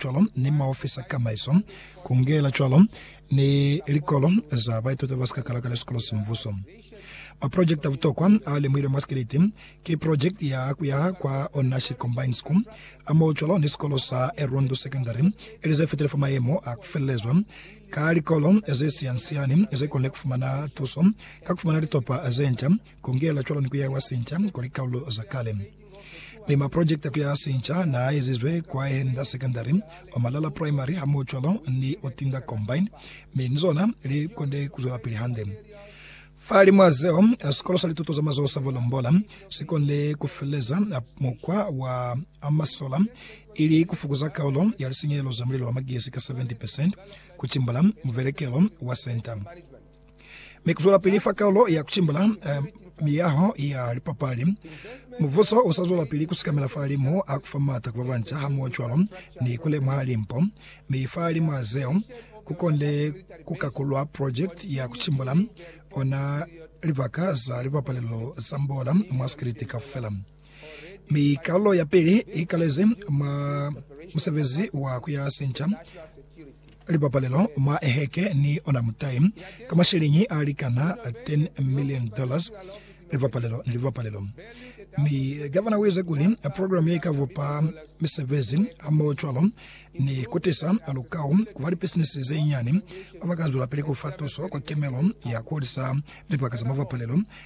cwalo ni maofisi a kamaiso, ku ngela cwalo ni likolo za baituti ba si ka kalakala sikolo sa mubuso. Maprojekiti a butokwa a lemuhilwe mwa sikiliti ki projekiti ya ku yaha kwa Onashi Combined School hamohocwalo ni sikolo sa Erundu Secondary, ili ze fitile fa mayemo a ku felelezwa ka likolo ze siani-siani ze konile ku fumana tuso ka ku fumana litopa ze nca, ku ngela cwalo ni ku yahiwa sinca kwa likalulu za kale. mi maprojekte ku ya sinca naa ezizwe kwa Henda Secondary, Omalala Primary hamoocwalo ni Otinda Combine, mi ni zona li konde ku zwelapili hande. Fahalimw'a zeo, Sikolo sa Lituto za Mazoho sa Volombola si konde ku feleza mukwa wa Amasola, ili ku fokuza kaulo ya lisinyehelo za mulilo wa magesi ka 70 percent, ku cimbula muvelekelo wa senta. Mi kuzwelapili fa Kalulo ya Kucimbula Miyaho ya Lipapali, mubuso usazwelapili kusikamela fahalimu ha kufa maata kuba banca hamohocwalo ni kulemuha limpo, mi fahalimu ha zeo, kukonde kukakulwa project ya kucimbula ona libaka za lipapalelo za mbola mwa sikiliti kaufela. Mi kalo ya pili i kalezi mwa musebezi wa ku ya sinca lipapalelo mwa eheke ni ona mutai ka masheleñi a likana 10 million dollars lipapalelo ni lipapalelo. Mi Gavana u ize kuli programe ye i ka bupa misebezi hamohocwalo ni ku tisa lukau ku ba lipisinisi ze nyani ba ba ka zwelapili ku fa tuso kwa kemelo ya ku hulisa libaka za mapapalelo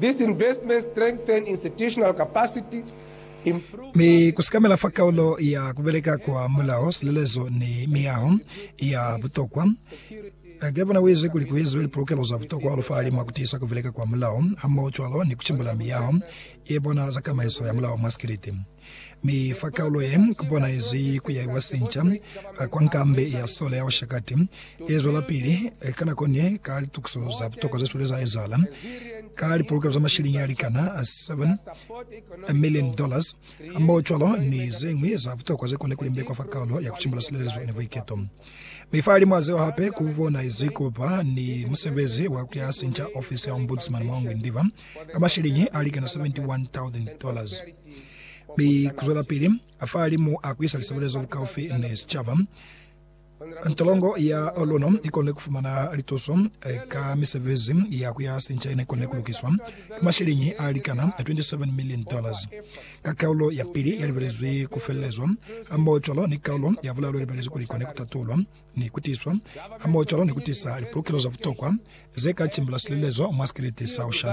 These investments strengthen institutional capacity, improve. Mi ku sikamela fa kaulo ya ku beleka kwa mulao, silelezo ni miyaho ya butokwa. Gavana u ize kuli ku eziwe lipolokelo za butokwa hahulu fahali mwa ku tiisa ku beleka kwa mulao, hamoho cwalo ni ku cimbula miyaho ye bona za kamaiso ya mulao mwa sikiliti. Mi fa kaulo ye bonaizi ku yaiwa sinca kwa nkambe ya sole ya Oshakati, ye zwelapili ka nako ni ka litukiso za butokwa ze swile za ezahala, ka lipolokelo za mashiliñi a likana 7 milioni dollars, hamohocwalo ni zeñwi za butokwa ze kone ku limbekwa fa kaulo ya ku cimbula silelezo ni buiketo. Mi fahalimw'a zeo hape, ku bonaizi ku ba ni musebezi wa ku yaha sinca ofisi ya Ombudsman mwa Ngwindiva. ka masheleñi a likana $71,000, mi kuzwelapili fahalimu a kuisa lisebelezo lukaufi ni sicaba. Ntolongo ya luna ikonile kufumana lituso ka misebezi ya kuyaha sinca yene ikonile kulukiswa ka masheleñi a likana $27 million, ka kaulo ya pili yalibelezwi kufelelezwa hamoho cwalo ni kaulo ya bulalo yalibelezwi kuli ikone kutatulwa. ni kutiswa ha muocalo ni kutisa lipulukelo za butokwa ze ka cimbula silelezo mwa sikeleti sa ho shana.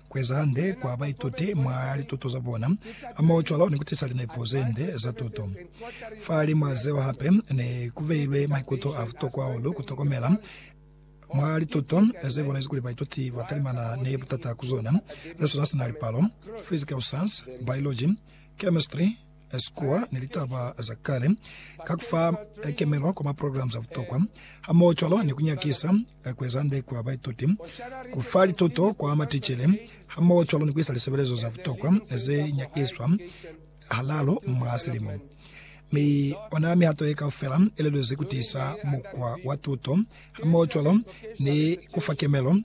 kueza hande kwa baituti mwa lituto za bona, hamoho cwalo ni kutisa linepo zende za tuto. Fahalimw'a zeo hape, ne kubeilwe maikuto a butokwa hahulu kutokomela mwa lituto ze bonezi kuli baituti batalimana ni butata ku zona, ze sona sina lipalo, physical science, biology, chemistry, Sikuwa ni litaba za kale, ka ku fa kemelo kwa maprograma a butokwa, hamohocwalo ni ku nyakisa ku ezande kwa baituti, ku fa lituto kwa maticele, hamohocwalo ni ku isa lisebelezo za butokwa ze nyakiswa halaalu mwa silimo. Mi ona mihato ye kaufela i lelezi ku tiisa mukwa wa tuto hamohocwalo ni ku fa kemelo